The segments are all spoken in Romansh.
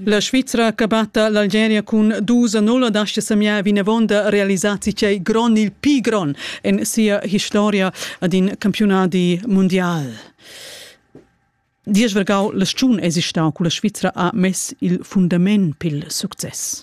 La Svizra che batta l'Algeria cun dus a null dascha semiar vinavon da realisar tgei gron il pi gron en sia historia ad in campionadi mondial. Diesch vergau la stun esistau culla Svizra ha mess il fundament pil success.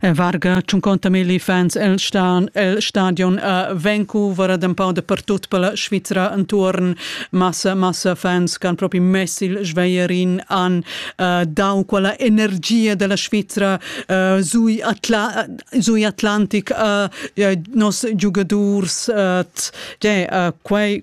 En varga 50 milli fans el, stan, el stadion a Vancouver ad empau de pertut per la Svizra entuorn. Massa, massa fans che han proprio messi il sveierin an uh, dau quella energia della Svizra uh, sui, Atla sui Atlantic uh, ja, nos giugadurs uh, yeah, uh, quei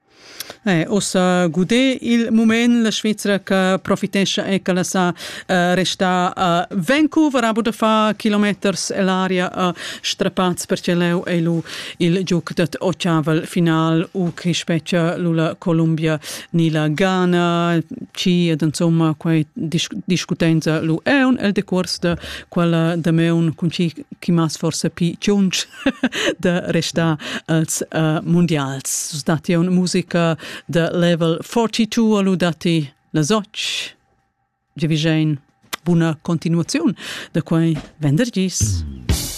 Ussa gudé il mument la Svizra che profitescha e ch'el sa restar a Vancouver amo da far kilometers ell'aria a strapats perche leu ei lu il giug dad ottavel final u chi spetga lu la Columbia ni la Ghana chi ed insomma quei discutenza lu aun el decuors da quella damaun cun chi chi m'has forsa pli tschunsch da restar als uh, mundials. Dati un musica da level 42 alu dati las 8. Giavigin, buna continuazione da quei venderdis. Mm.